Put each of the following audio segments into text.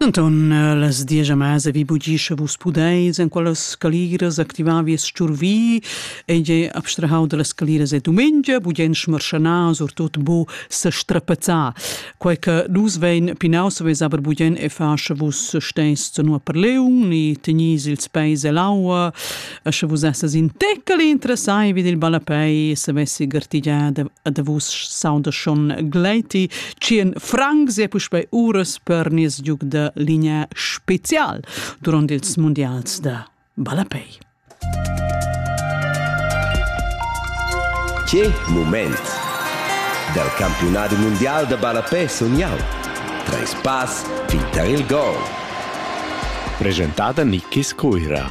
Anton, eh, las diagiamas vi bugi sche vus pudeis en quellas caliras activar vies sturvi ei ei abstrahau dallas caliras e dumengia bugien schmarschana surtut bu sestrapazzar quei che nus vein pinaus vez aber bugien e fa sche vus steis nua per leun ni tenis ils peis e l'aua e sche vus essas in teccel interessai vid il ballapei e savessi gartigiar ad vus sauda schon gleiti tschien francs e puspei uras per nies giug da linea special durant ils mondials da ballapei. Che moment! Dal campionat mondial da ballapei sognau. Treis pass fin tar il gol. Presentada Nikis Cuira.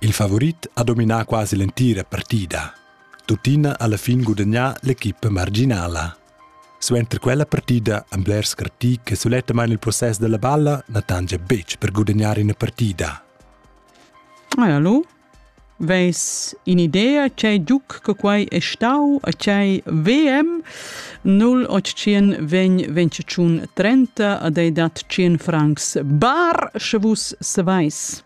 Il favurit ha dominà quasi l'entira partida. Tuttina ha alla fin gudagnà l'equipa marginala. Suenter quella partida han blers scartì che sulettamain il process della balla na tangia betg per gudagnare ina partida. Ah, hallo? Veis in idea c'è giuc che quai è stau a c'è VM 0800 vegn 25 30 ad ei dat 100 francs bar, sche vus savais.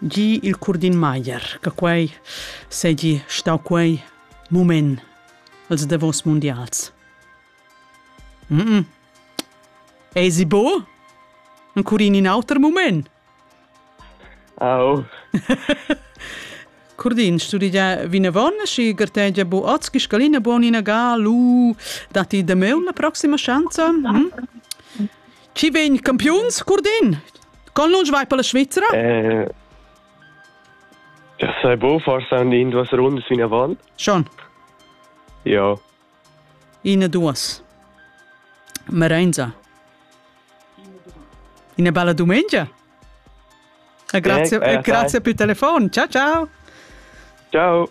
Gie il Curdin Maier, che quei seigi stau quei mument els davos mundials. Mm -mm. Eisi bo? Encurin in auter mument? Oh. Curdin, studigia vinavon și gărtegia bu otski scalina bon inaga lu dati de meu la proxima schanza? Hm? Chi vegn campiuns, Curdin? Con lunsch vai per la Svizzera? Eh, sei bo, forse an in duas rundas fin avant. Schon? Ja. Ine duas. Merenza. Ina bella domenica. E grazie, eh, eh, grazie per il telefono. Ciao ciao. Ciao.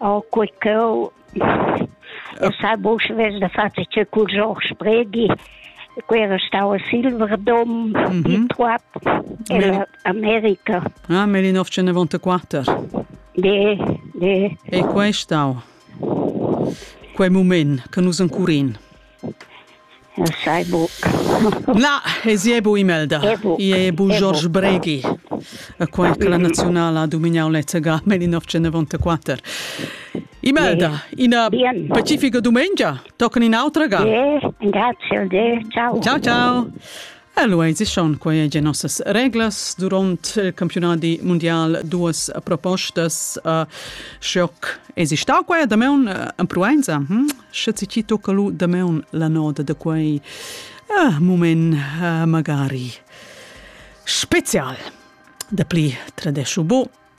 Oh, quei cheu, eu sai buca vess da far tgei cul Georg Spregi, quei era stau a Silverdom, mhm. il Troap, in America. Ah, nel 1994? De, de. E quei stau? Quei moment che nus ancurin. Eu sai buc. Na, ezi è bu Imelda. È bu. I è bu George Breghi, quai che la naziunala ha domignau lezzega 1994. Imelda, ina Bien. pacifica dumengia, tocan in autra ga. Bien, grazie a te. Ciao. Ciao, ciao. Allo eisichon quai egia nossas reglas durant il campionadi mundial duas propostas uh, schoc esistau quai da meun uh, en Proenza hm? sche si ci tocca lu da meun la noda da quei uh, moment uh, magari special da pli tradesciu bo